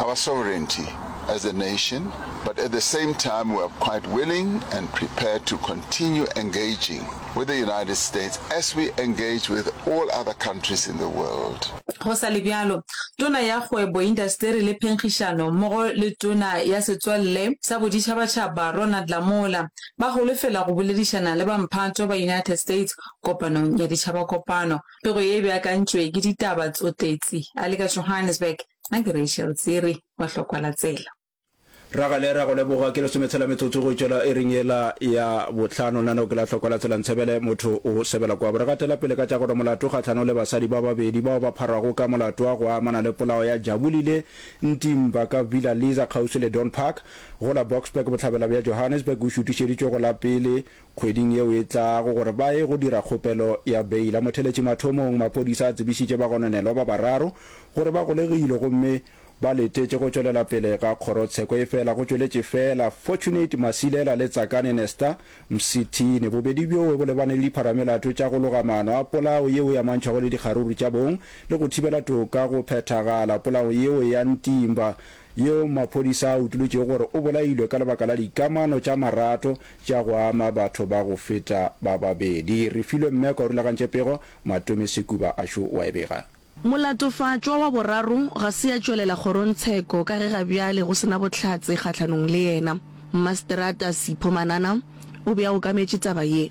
our sovereignty as a nation, but at the same time we are quite willing and prepared to continue engaging with the United States as we engage with all other countries in the world. Go sa le bjalo, Tona ya Kgwebo, Indasteri le Phenkgišano mmogo le Tona ya Setswalle sa Boditšhabatšhaba Ronald Lamola ba holofela go boledišana le bamphato ba United States kopanong ya ditšhabakopano. Pego ye e beakantšwe ke Ditaba tsotetsi a le ka Johannesburg. A ke Rachel Tsiri wa Hlokwala Tsela. Ragale, ra go leboga. Ke lesome tshela metsotso go tšwela iring yela ya bohlano. Nano ke la Hlokwala Tsela Ntshebele, motho o sebela kwabo. Re gatela pele ka tša gore molato kgahlano le basadi ba babedi bao ba pharwago ka molato wa go amana le polao ya Jabulile Ntimba ka Villa Liza kgauswi le Don Park go la Boksburg bohlabela bja Johannesburg o šutišeditšwe go la pele Kgweding yeo e tlago gore ba ye go dira kgopelo ya beile. A Motheletši Mathomong maphodisa a tsebišitše bagononelwa ba bararo gore ba golegilwe gomme ba letetše go tšwelela pele ga kgorotsheko efela go tšweletše feela Fortunate Masilela le Tsakane Nesta Msithini. Bobedi bjoo bo lebane le dipharamelato tša go loga maano a polao yeo e amantšhago le dikgaruru tša bong le go thibela toka go phethagala. Polao yeo ya Ntimba yeo maphodisa a utolotšego gore o bolailwe ka lebaka la dikamano tša marato tša go ama batho ba go feta ba babedi. Refilwe Mmeko a rulagantše pego, Matome Sekuba a šo wa e bega. Molatofatšwa wa boraro ga se ya tšwelela kgorongtsheko ka ge ga bjale go se na bohlatse kgahlanong le yena. Mmaseterata Sipho Manana o be a okametše taba ye.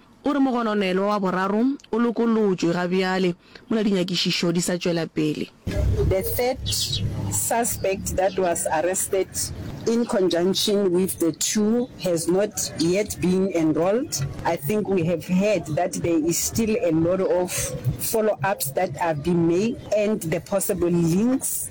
O re mogononelwa wa boraro o lokolotšwe ga bjale mola dinyakišišo di sa tšwela pele. The third suspect that was arrested in conjunction with the two has not yet been enrolled. I think we have heard that there is still a lot of follow-ups that are being made and the possible links.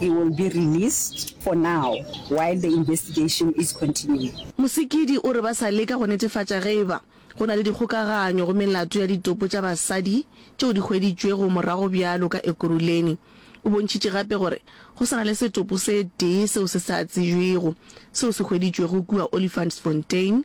He will be released for now while the investigation is continuing. Mosikidi o re ba sa leka go netefatša ge e ba go na le dikgokaganyo go melato ya ditopo tša basadi tšeo di hweditšwego morago bjalo ka Ekurhuleni. O bontšhitše gape gore go sa na le setopo se tee seo se sa tsebjwego seo se hweditšwego kua Olifantsfontein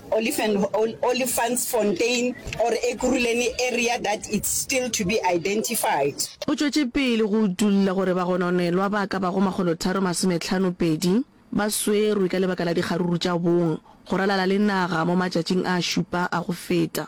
Olifantsfontein or Ekurhuleni area that it's still to be identified. O tšwetše pele go utolla gore bagononelwa ba ka bago makgolotharo masometlhano pedi ba swerwe ka lebaka la dikgaruru tša bong go ralala le naga mo matšatšing a šupa a go feta.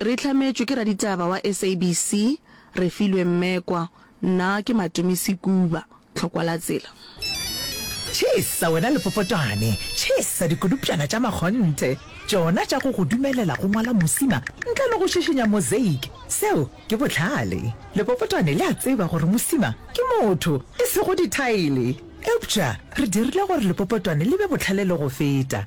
Re hlametšwe ke raditaba wa SABC, Refilwe Mmekwa. Nna ke Matumi Sekuba, Tlhokwa la Tsela. Tšhesa wena lepopotwane, tšhesa dikodupšana tša makgonthe, tšona tša go go dumelela go ngwala mosima ntle le go šišinya mosaic. Seo ke bohlale. Lepopotwane le a tseba gore mosima ke motho, e sego dithaele. Eupša re dirile gore lepopotwane le be bohlale le go feta.